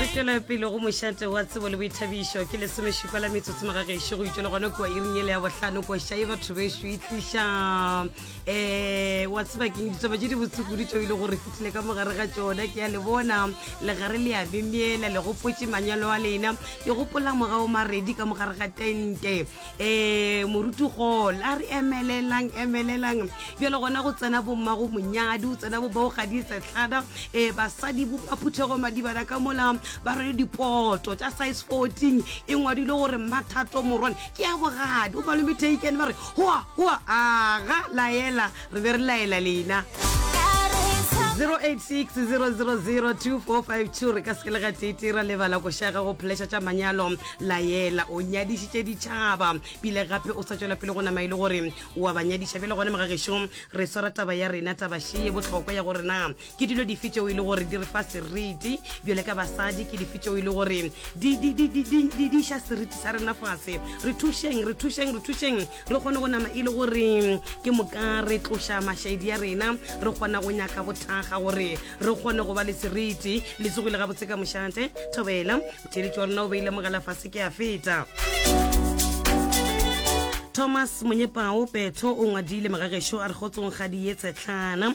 re tšwele pele go mošate wa tsebo le boithabišo ke lesomešupa la metsotso magagešo go itšwe le gone kua iring ele ya bohlano koša e batho bešo e tliša um eh, wa tsebakeng ditaba tše di botsekudu tšeo e le gore fitlhile ka mogare ga tšona ke ya le bona legare le ya memela le gopotše manyalo a lena ke gopola morago maredi ka mogare ga tente um moruti gol a re emelelang emelelang bjale gona go tsena bomma go monyadi go tsena bo bao gadi setlhada um basadi bopaphuthego madibana ka mola ba rwele dipoto tša size fourteen e ngwadile gore mathato morwane ke ya bogadi o malome taken ba re goa goa aga laela re be re laela lena 0860002452 re ka se le gatete ra lebala go šaga go pheleša tša manyalo laela o nyadišitše ditšhaba pile gape o sa tšwela pele go nama e le gore wa ba nyadiša bjale gone mogagešong re swara taba ya rena tabašee botlhokwa ya gore na Ke dilo dife tšeo e le gore di re fa seriti bjale ka basadi? Ke dife tšeo e le gore di, di, di, di, di, di, di ša seriti sa rena fase? Re thušeng, re thušeng, re thušeng re kgone go nama e le gore ke moka re tloša mašaedi a rena, re kgona go nyaka go thakga gore re kgone go ba le seriti. Le tsogile gabotse ka mošate. Thobela, motheeletši wa rena o beile mogala fase, ke a feta. Thomas Monyepao Petho o ngwadile magagešo a re gotsong ga di ye tshetlana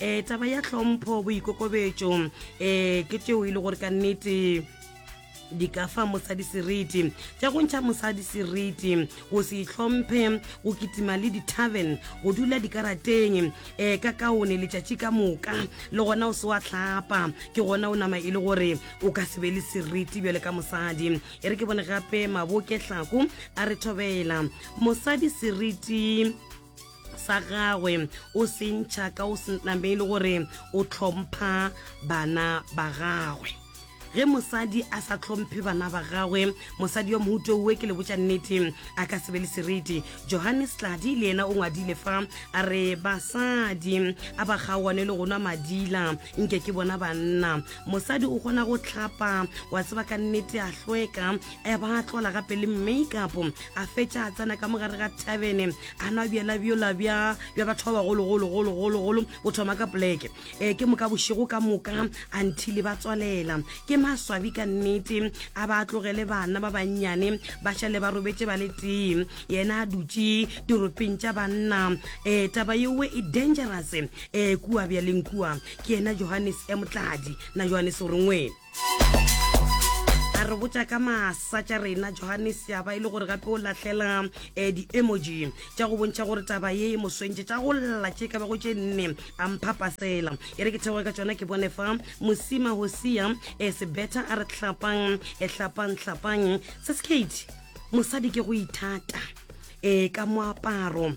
um taba ya tlhompho boikokobetso um ke tšeo e le gore ka nnete di ka fa mosadi seriti tša go ntšha mosadi seriti go se itlhomphe go kitima le di-tarven go dula dikarateng um eh, ka kaone letšatši ka moka le gona o se wa tlhapa ke gona o nama e le gore o ka se be le seriti bjale ka mosadi e re ke bone gape maboke tlhako a re thobela mosadi seriti sa gagwe o se ntšha ka o se name e le gore o tlhompha bana ba gagwe ge mosadi a sa tlhomphe bana ba gagwe mosadi wa mohuto uwe ke le botša nnete a ka sebe le seriti johannes tladi le yena o ngwadile fa a re basadi a ba kgaoane le gonwa madila nke ke bona banna mosadi o kgona go tlhapa wa tseba ka nnete a hlweka a ba a tlola gape le makeup a fetša a tsena ka mogare ga tavene a nwa bjala bjola bja bja batho ba bagologologologologolo o thoma ka poleke um ke moka bošego ka moka a nthile ba tswalela ke maswabi ka nnete a ba a tlogele bana ba bannyane ba šale ba robetše ba le tee yena a dutše diropeng tša banna um taba yeowe e dangerous um kua bjaleng kua ke yena johannes motladi na johannes o rengweng a re botša ka masa tša rena johannes ya ba e le gore gape o lahlela um di-emoji tša go bontšha gore taba ye e moswentše tša go lla tše ka bago tše nne a mphapasela e re ke theoge ka tsona ke bone fa mosima go sia um e sebetha a re tlhapang e tlhapang tlhapang se sekate mosadi ke go ithata e ka moaparo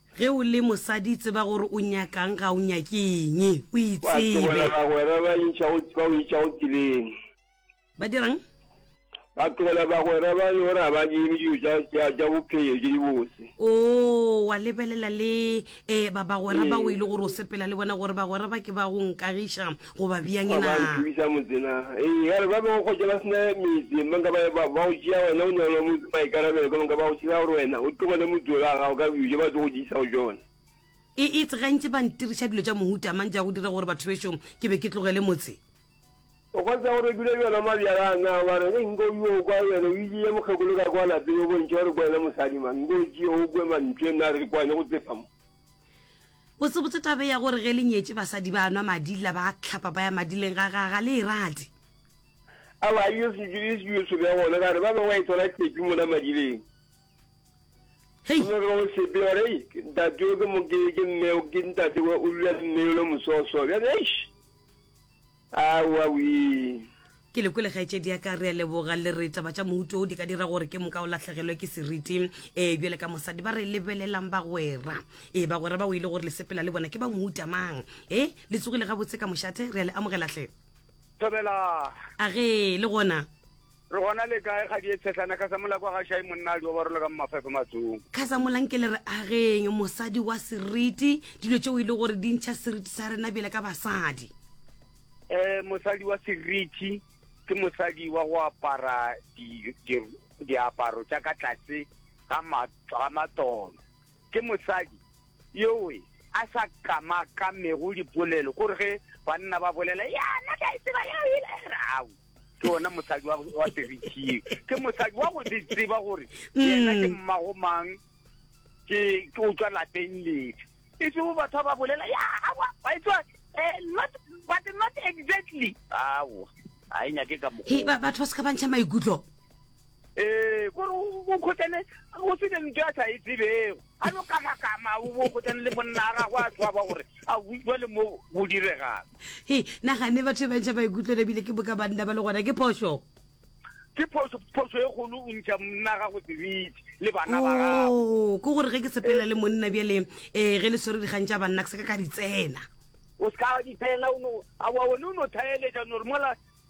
Ge o le mosadi, tseba gore o nyaka'ng, ga o nyake eng. O itsebe. Ba tlogela bagwera ba intšha go tseleng. Ba dira'ng? Ba tlogela bagwera ba le gore ga ba nyeme dilo tša bophelo tše di bose. Oo, wa lebelela le, ee, ba bagwera bao e le gore o sepela le bona, gore bagwera ba ke ba go nkagiša. goba bjang na? Ba nthuša motse na? Ee, ya re ba bego kgotša ba sena metse, ba nka ba go tšea wena o nyalwa motse maikarabelo, ka nka ba go tšhela gore wena o tlogele motse o la gago ka dijo ba tlo go diisa go tšona. E itse gantši ba ntiriša dilo tša mohuta mang tša go dira gore batho bešong ke be ke tlogele motse? O kgotsa gore dula bjona mabjala na ba re ge nko yo kwa wena o ile ya mokgekolo ka kwa lapeng o bontšha gore kwena mosadi mang nko tšeo o kwe mantswe na re kwane go tsefa mo Botsebotse tabe ya gore ge le nyetše basadi ba nwa madi la ba hlapa ba ya madileng ga ga ga le e rate. Awa a yo se dire seo se be gona gare ba be wa e thola tšepi mona madileng. Hey. Go be go sepe gore hey ntate yo ke mo ke ke mme ke ntate wa o lula mme yo lo mososo. Bjale eish. Aowa wee. Ke le kwele kgaetšedi ya ka, re a leboga. Le re taba tša mohuto wo di ka dira gore ke moka o lahlegelwe ke seriti. Ee, bjale ka mosadi ba re lebelelang bagwera. Ee, bagwera bao e le gore le sepela le bona ke ba mohuta mang? Ee, le tsogile gabotse ka mošate, re a le amogela hle. Thobela. A ge le gona? Re gona le kae kgadie tshehlana? Khasamola kwa ga Shai monna a di obarolo ka mo mafefe matsong. Khasamola nke le re ageng mosadi wa seriti, dilo tšeo e le gore di ntšha seriti sa rena bjale ka basadi. Eh, mosadi wa seriti ke mosadi wa go apara di, di, diaparo tša ka tlase ga matolo. Ke mosadi yoe a sa kamakamego dipolelo, ko re ge banna ba bolela, ya nna ke a e tseba yeo e le, re, au. ke ona mosadi wa wa terikeng ke mosadi wa go di tseba gore yena ke Mm. mmago mang ke ke o tswa lapeng lefe e se bo batho ba ba bolela ya awa wa e tswa eh, not but not exactly awa ga e nyake ka he mokgwa ba- batho ba se ka ba ntšha maikutlo ee kore o kgotane go se lentswe a sa e tsebego a no kamakama o kgotane le monna a gago a tshwaba gore a utlwa le mo go diregang he nagane batho ba ntšha maikutlwelo ebile ke boka banna ba le gona ke phoso ke phoso phoso e kgolo o ntšha monna gago sebitse le bana ba gago oh, ke gore ge ke sepela le monna bjale um eh, ge le swere dikgang tša banna ke se ka ka di tsena o se ka di tsena a wa one o no thaeletša nore mola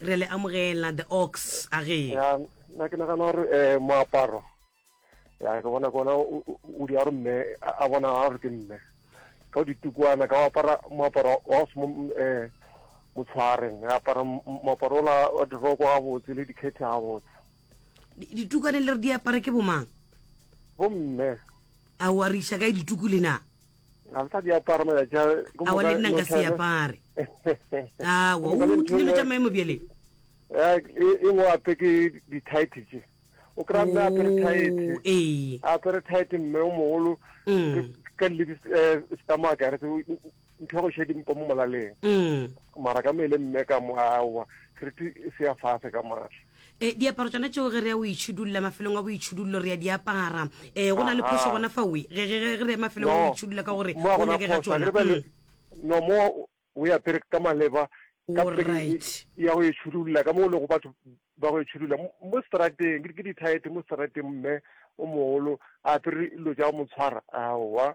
re le amogela the ox a ge na ke nagana gore um moaparo ya ke bona kona o di a gore mme a bona a gore ke mme ka ditukwana ka apara moaparo wa se um motshwareng a apara moaparo ola wa diroko ga botse le dikgethe ga botse ditukwane le re di apara ke bomang bomme a wa re isa kae dituku le na ga sa di apara matšatši a ke awa le nna nka se apare awa o tlile no tša maemo bjale e ngwe ape ke di-tight tše o kry-a mme apere tight apere tight mme o mogolo ka ledi stamaka ya retse ntlhogo šedi mpa mo molaleng mara ka mele mme ka mo aowa seriti se ya fase ka maatla E, diaparo tsona tšeo ge re ya o itšhidulla mafelong a boitšhidullo re ya di apara e, go na le phoso gona fa oe ge ge- ge- ge re ya mafelong a No. boitšhidulla ka gore Mo o gona nyake ga phoso, tsona akere ba le- Mm. no mo o ya pere ka maleba ka All pere right. ya go itšhudulla ka mo o lego batho ba go itšhudulla mo- mo strateng ke ke dithaete mo strateng mme o mogolo a pere dilo tša go mo tshwara aowa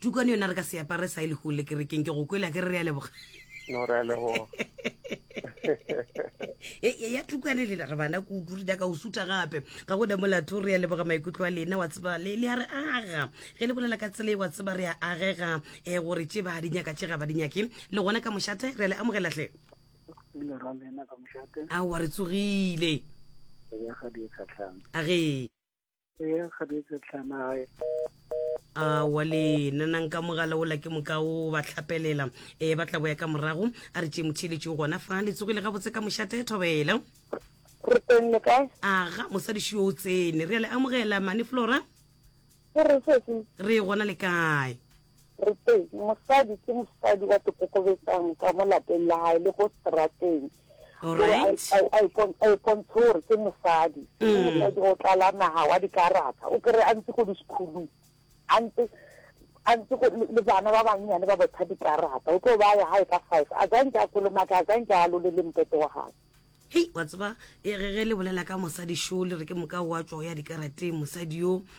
tukwane yona re ka se apare sa e le gole kerekeng ke go kwele a ke re re ya leboga no re ya leboga e ya tukwane lena re bana kudu re daka o suta gape ga go damolatho re ya leboga maikutlo a lena wa tseba le le a re aga ge le bolela ka tsela e wa tseba re a agega um eh, gore tše ba di nyaka tše ga ba di nyake le gona ka mošate re a le amogelatlhe a wa re tsogile a ge Eya kgabetsa tlhama gae. a wa le nanang ka mogala ola ke moka o ba tlhapelela e ba tla boya ka morago a re tšee motheeletši o gona fa le tsogile gabotse ka mošate thobela Re teng le kae? aga mosadiši yo o tsene re a le amogela mane flora Ke re sesi. re gona le kae Re teng. Mosadi ke mosadi wa tokokobetsang ka mo lapeng la hae le ko strateng. Right. a e pon- a e pontshe gore ke mosadi o o tlala naga wa dikarata o kry a ntse ko di-schoolong a ntse a ntse go- le le bana ba bannyane ba botha dikarata o tlo ba ya gae ka five a zanke a kolomaka a zanke a lole le mpete wa gage hei wa tseba e re ge le bolela ka mosadi šo le re ke moka wa tšwa o ya dikarateng mosadi yo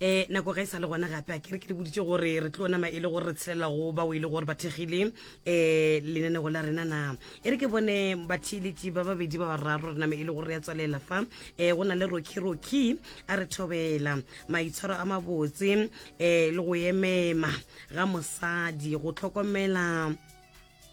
um nako ga e sa le gona gape a kere ke le boditse gore re tlo nama e le gore re tshelela go bao e le gore ba thekgile um lenanego la rena na e re ke bone batheeletši ba babedi ba bararo re name e le gore re ya tswalela fa um go na le rocky rocky a re thobela maitshwaro a mabotse um le go emema ga mosadi go tlhokomela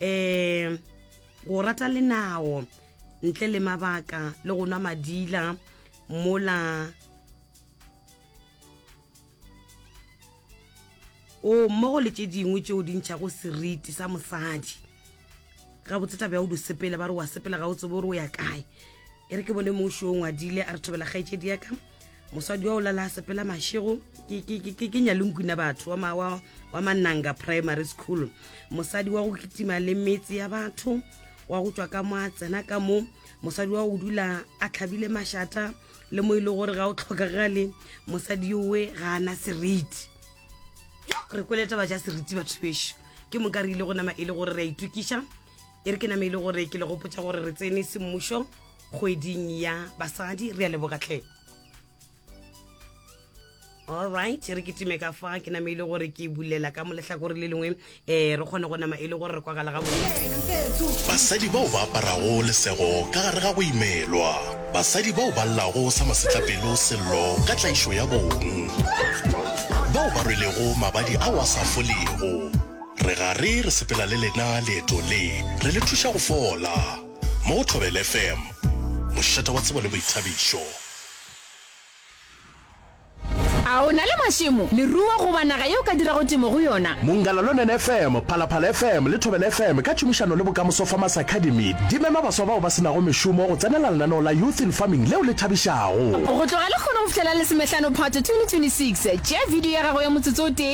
um go rata lenao ntle le mabaka le go nwa madila mola o mmogo le tše dingwe tšeo di ntšhago seriti sa mosadi ga botseta bja o di sepela ba re wa sepela ga o tsebo gore o ya kae e re ke bone mongwe šoo ngwadile a re thobela kgaetšedi yaka mosadi wa o lala sepela mašego ke nyalonkwina batho wa mananga primary school mosadi wa go kitima le metse ya batho wa go tswa ka mo a tsena ka mo mosadi wa go dula a tlhabile mašata le mo e le gore ga o tlhokagale mosadi yowe ga ana seriti re kweleta ba ja seriti batho bešo ke moka re ile go nama e le gore re a itokiša e re ke name e le gore ke le gopotsa gore re tsene semmušo kgweding ya basadi re a leboga tlhe alright re ke time ka fa ke name e le gore ke bulela ka moletlhakore le lengwe um re kgone go nama e le gore re kwagala ga bontsi basadi bao ba aparago lesego ka gare ga go imelwa basadi bao ba llago sa masetlapelo sello ka tlaišo ya bong bao ba rwelego mabadi ao a sa folego Re gare re sepela le lena leetong le, re le thuša go fola. Mo go Thobela FM, mošate wa tsebo le boithabišo. A o na le mašemo, leruo goba naga yeo o ka dirago temo go yona? Mongalalonen FM, Phalaphala FM le Thobela FM ka tšhomišano le Bokamoso Farmers Academy di mema baswa bao ba se nago mešomo go tsenela lenaneo la Youth in Farming leo le thabišago. Go tloga lekgono go fihlela Lesomehlano Phato 2026, tšea video ya gago ya motsotso o tee,